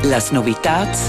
Las novitads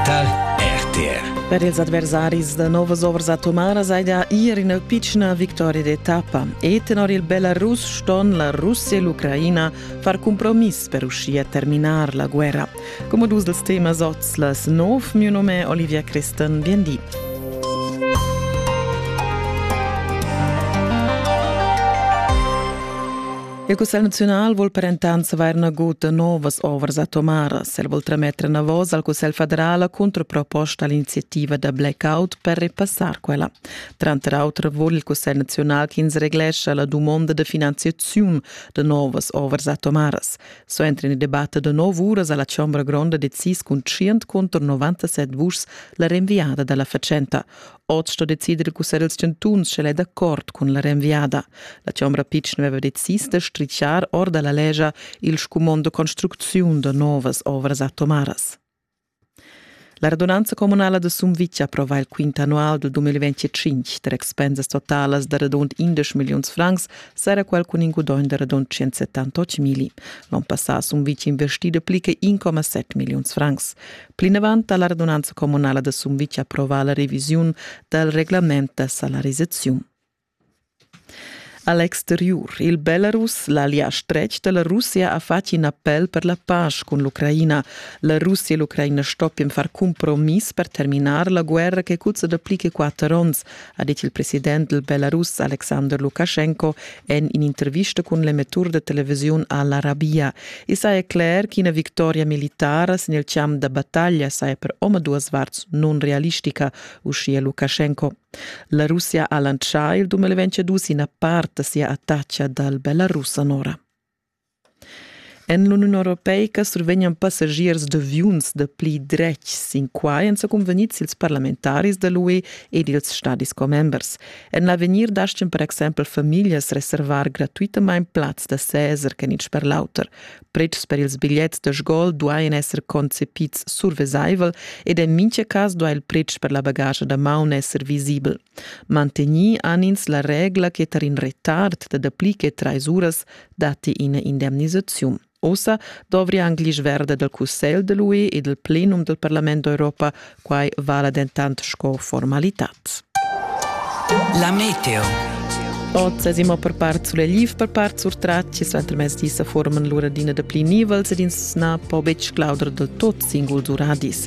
tar RTR. Per ils adversaris da novas ovras atomaras hai da ir ina pitschna victoria d'etappa. E tenor il Belarus ston la Russia e l'Ucraina far compromiss per uschia terminar la guerra. Come dus dels temas oz las nov, mio nome è Olivia Crestan, biendì. Il Cussegl naziunal vul per entant savair nagut da novas ovras atomaras. El vul trametter enavos al Cussegl federal la controproposta all'iniziativa da blackout per repassar quella. Tranter auter vul il Cussegl naziunal ch'ins reglescha la dumonda da finanziaziun da novas ovras atomaras. So entren in debatte da nov uras alla Chombra Gronda decis cun 100 contro 97 vuschs la rinviada dalla fatschenta. Oz sto decider il cussegl dals chantuns sch'el è d'accord cun la renviada. La chombra pitschen aveva decis da stritschar or da la legia il scumond de construcziun da novas ovras atomaras. La radunanza comunala de Sumvitg approva il quint annual del 2025 der expensas totalas de radund 11 milions francs sarà quel cun in gudogn de radund 178 mili. L'on passà a Sumvitg investide pli che 1,7 milions francs. Plinavant ha la radunanza communala da Sumvitg approvà la revisiun dal reglament da salarisaziun. A l'exteriur, il Belarus, l'Alia stretg da la Russia ha fatg in appel per la pace cun l'Ucraina. La Russia e l'Ucraina stoppien far cumpromiss per terminar la guerra che cuzza da pli che quatter onns, ha dit il president dal Belarus Alexander Lukaschenko en in'intervista cun l'emettur de televisiun Al-Arabia. I saja cler ch'ina victoria militara sin il champ da battaglia saja per omaduas varts non-realistica, uschia Lukaschenko. La Russia ha lancià il 2022 ina part da sia attacca dal Belarus anora. En l'Uniun europeica survegnan passagiers d'aviuns da pli dretg sin quai èn sa cunvegnids ils parlamentaris da l'UE ed ils stadis commembers. En l'avegnir dastgan per exempel famiglias reservar gratuitamain plaz da seser ch'en in sper l'auter. Pretschs per ils bigliets da sgol duain esser concepids survesaivel ed en mintga cas duai il pretsch per la bagaglia da maun esser visibel. Mantegnì han ins la regla che tar in retard da dapli che trais uras datti ina indemnisaziun. Ossa dovria anc l'isch verda dal Cussegl da l'UE e dal plenum dal Parlament d'Europa, quai vala dentant sco formalitad. La meteo. Oz esimo per part sulegliv, per part surtratgi, suenter mezdi sa forman l'uradina da pli nivels ed ins na po betg clauder del tot singuls uradis.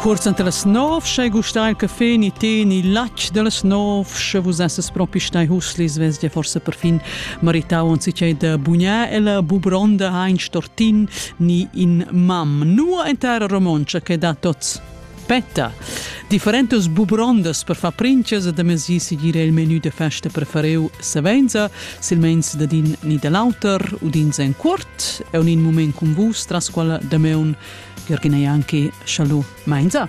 Cuorz anta las nov, sche gustai il caffè ni tè ni latg dallas nov, sche vus esses propi stai huslis, vess dir forse perfin maritau onzi che da bugnar e la bubronda ha in stortin ni in mam. Nua en terra romontscha che da tots. Petta. Differentas bubrondas per far princes e da mesi seguire il menü de festa prefereu savenza silmeins dad in ni da l'auter udins en cuort e un in moment cun vus tras quella dameun Jürgen ei anche Chalu Mainza.